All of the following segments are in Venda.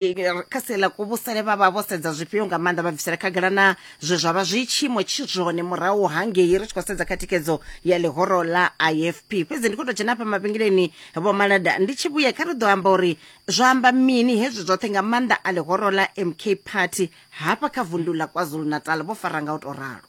kha sia ḽa kuvhusele vha vha vho sedza zwifhio nga maanḓa vha bvisela khagala na zwe zwa vha zwi tshiimo tshi zwone murahu hangei ri tshi khou sedza kha thikedzo ya ḽihoro ḽa ifp fhedzi ndi khou tou dzhena hafha mavhengeleni vho malada ndi tshi vhuya kha ri ḓo amba uri zwa amba mini hezwi zwoṱhe nga maanḓa a ḽihoro ḽa mk party hafha kha vundu ḽa kwazulu natal vho fara nga u tou ralo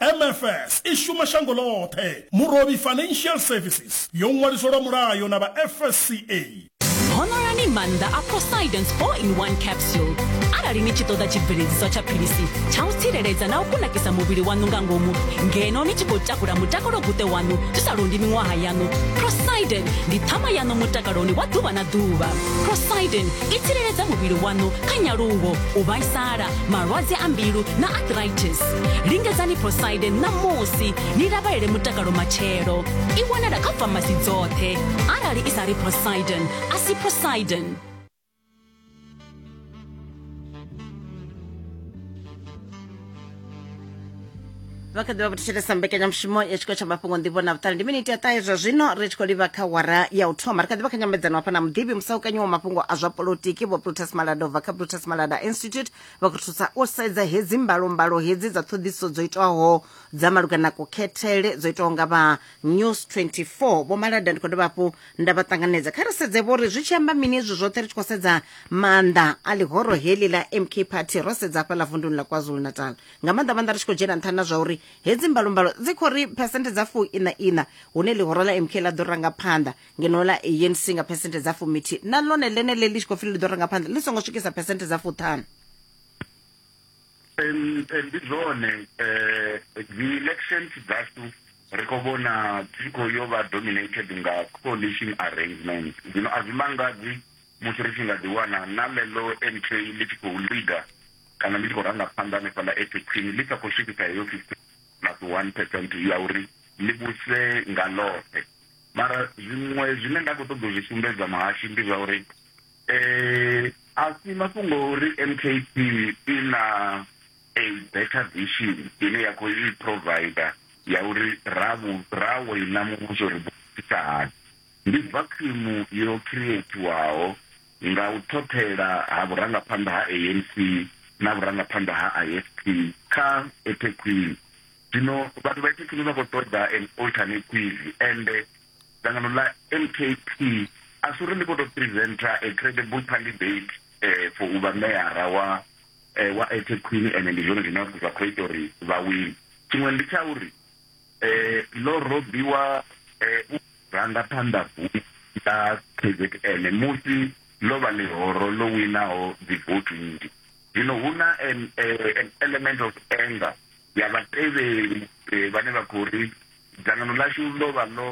MFS i shuma shango ḽoṱhe. Murovhi Financial Services yo ṅwaliswa lwa mulayo na vha FSCA. Honoloni maanḓa a Poseidon's 4-in-1 capsule. Arali ni tshi ṱoḓa tshibveledziswa tsha philisi tsha u tsireledza na u kunakisa muvhili waṋu nga ngomu ngeno ni tshi khou takula mutakalo-guṱe waṋu zwi sa londi miṅwaha yaṋu, Poseidon ndi ṱhama yaṋu mutakaloni wa ḓuvha na ḓuvha. Poseidon i tsireledza muvhili waṋu kha nyaluwo, u vhaisala, malwadze a mbilu na arthritis. lingedzani posaide ṋamusi ni lavhelele mutakalo matshelo i wanala kha famasi dzoṱhe arali i sa ri posaiden a si posaiden vha kha ḓivha vhothishelesa mbekanyamushumo ya tshikolo tsha mafhungo nḓivho na vhuṱali ndi miniti ya ṱahe zwa zwino ri tshi khou livha kha wara ya u thoma ri kha ḓivha kha nyambedzano hafha na muḓivhi musaukanyiwa mafhungo a zwa polotiki vho plutus malada ubva kha plutus malada institute vha khou thusa u sedza hedzi mbalombalo hedzi dza ṱhoḓiso dzo itwaho dza malugana na kukhethele dzo itwaho nga vha news 24 vho malada ndi khou dovha hafhu nda vha ṱanganedza kha ri sedze vho ri zwi tshi amba mini izwi zwoṱhe ri tshi khou sedza maanḓa a ḽihoro heḽi ḽa mk party ro sedza hafha ḽa vunduni ḽa kwazulu natal nga maanḓa maanḓa ri tshi khou dzhena nṱhani na zwa uri hedzi mbalombalo dzi khou ri phesenthe dza fuu ina ina hune ḽihoro ḽa mk ḽa ḓo ranga phanḓa ngeno ḽa anc nga phesenthe dza fumithi na ḽone ḽeneḽe ḽi tshi khou pfi ḽi ḓo renga phanḓa ḽi songo swikisa phesenthe dza fuṱhanu ndi zwone um dzi-elections dzashu ri khou vhona dzi khou yo vha dominated nga coalition arrangement zwino a zwi mangadzi musi ri tshi nga ḓiwana na ḽeḽo nk ḽi tshi khou leader kana ḽi tshi khou ranga phanḓa hanefhaḽa ethi khwini ḽi sa khou swikisa heyo fifty plus one percent ya uri ḽi vhuse nga ḽoṱhe Mara zwiṅwe zwine nda khou ṱoḓa u zwi sumbedza muhashi ndi zwa uri um a si mafhungo a uri m k p i na a better vision ine ya khou i provider ya uri ra ra wina muvhuso ri ḓoisa hani ndi vakhimu yo creatiwaho nga u ṱhoṱhela ha vhurangaphanḓa ha anc na vhurangaphanḓa ha ifp kha ethekhwini Zwino vhathu vha Ethekwini vha khou ṱoḓa an alternative and dzangano ḽa MKP a si uri ḽi khou tou presenter a credible candidate eh, for u vha meyara wa eh, wa Ethekwini ende ndi zwone zwine zwa khou ita uri vha wine. Tshiṅwe ndi tsha uri eh, ḽo robiwa eh, u ranga phanḓa bufho ḽa KZN musi ḽo vha ḽihoro ḽo winaho dzivoutu nnzhi. Zwino hu na an, eh, an element of anger ya vhatevheli vhane vha khou ri, Dzangano ḽashu ḽo vha ḽo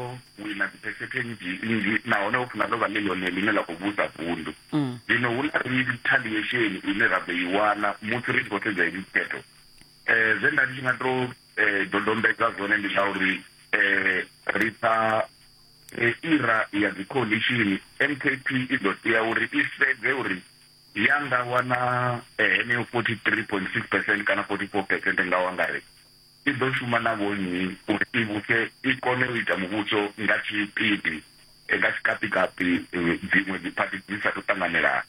wina dziphesethe nnzhi nnzhi nahone ho funa ḽo vha ḽi ḽone ḽine ḽa khou vhusa vundu. Zwino hu na rithaliesheni ine ra ḓo i wana musi ri tshi khou sedza hedzi dzikhetho. Zwe nda ndi tshi nga tou dodombedza zwone ndi zwa uri ri kha era ya dzikholiishini, MKP i ḓo tea uri i sedze uri ya nga wana heneyo 43.6 percent kana 44 percent nga u angaredza, i ḓo shuma na vhonnyi uri i vhuse i kone u ita muvhuso nga tshipidi nga tshikapi-kapi dziṅwe dziphathi dzi sa tou ṱanganelana.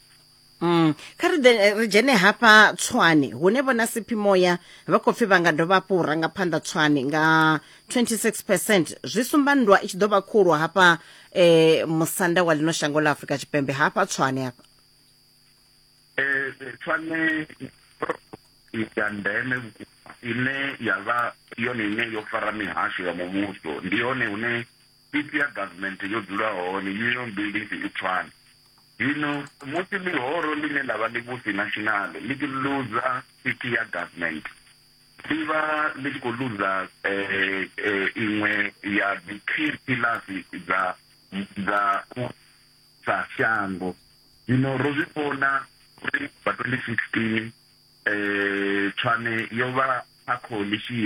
Mm. Kha ri ḓe ri dzhene hafha Tshwane hune vhona Siphimoya vha khou pfi vha nga dovha hafhu u ranga phanḓa Tshwane nga 26 percent zwi sumba nndwa i tshi ḓo vha khulu hafha eh, musanda wa ḽino shango ḽa Afrika Tshipembe hafha Tshwane hafha pfani ya ndeme vhukuma ine ya vha yone ine yo fara mihasho ya muvhuso ndi yone hune pipi ya government yo dzula hone union buildings i pfani zwino musi ḽihoro ḽine ḽa vha ḽivhusi national ḽi tshi luza pipi ya government ḽi vha ḽi tshi khou luza iṅwe ya dzi key pillars dza dza sa shango. Zwino ro zwi vhona uri bva 2016 Tshwane yo vha kha khoḽishini.